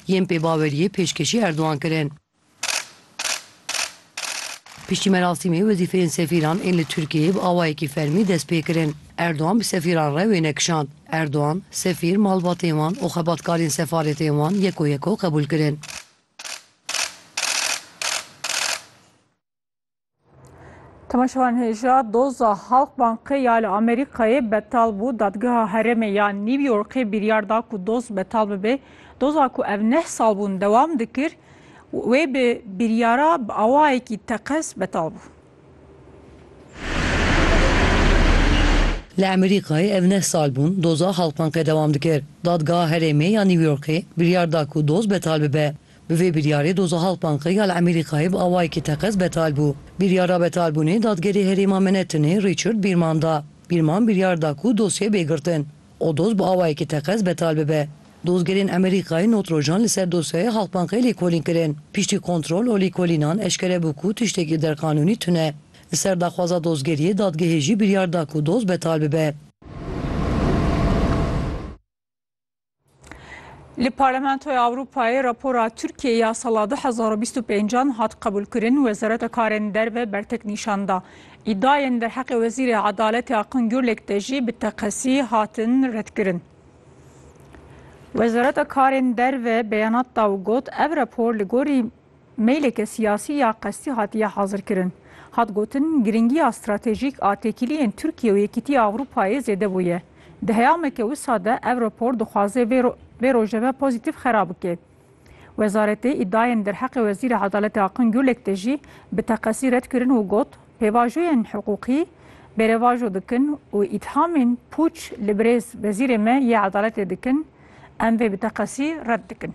Yên pêbaweriyê pêşkêşî Erdogan kirin. Piştî merasîmê wezîfeyên sefîran ên li Tirkiyeyê bi awayekî fermî dest pê kirin. Erdogan bi sefîran re wêne kişand. Erdogan, sefîr, malbatên wan û xebatkarên sefaretên wan yeko yeko qebûl kirin. Temaşevan hêja doza Halkbankê ya li Amerîkayê betal bû. Dadgeha herêmê ya New Yorkê biryar da ku doz betal bibe. Doza ku ev neh sal bûn dewam dikir wê bi biryara bi awayekî teqez betal bû. Li Amerîkayê ev neh sal bûn doza Halkbankê dewam dikir. Dadgeha herêmê ya New Yorkê biryar da ku doz betal bibe. Bi vê biryarê doza Halkbanka ya li Emerîkayê bi awayekî teqez betal bû. Biryara betalbûnê dadgerê herêma Menetinê Richard Bîrman da. Bîrman biryar da ku dosyê bê girtin û doz bi awayekî teqez betal bibe. Dozgerên Emerîkayê not rojan li ser dosyaya Halkbankê lêkolîn kirin. Piştî kontrol û lêkolînan eşkere bû ku tiştekî derqanûnî tune. Li ser daxwaza dozgeriyê dadgehê jî biryar da ku doz betal bibe. Li Parlamentoya Ewropayê rapora Tirkiyeyê ya sala 2025 hat qebûlkirin, Wezareta Karên Derve bertek nîşan da. Îdiayên derheqê Wezîrê Edaletê Akın Gürlek de jî bi teqesî hatin redkirin. Wezareta Karên Derve beyanat da û got, Ev rapor li gorî Meyleke siyasî ya qestî hatiye hazirkirin. Hat gotin, girîngiya stratejîk a têkiliyên Tirkiye û Yekîtiya Ewropayê zêde bûye. Di heyameke wisa de ev rapor dixwaze vê vê rojeve pozîtîf xera bike. Wezaretê îdiayên derheqê Wezîrê Edaletê Akın Gürlek de jî bi teqesî red kirin û got, Pêvajoyên hiqûqî bêrevajo dikin û îthamên pûç li birêz Wezîrê me yê Edaletê dikin, em vê bi teqesî red dikin.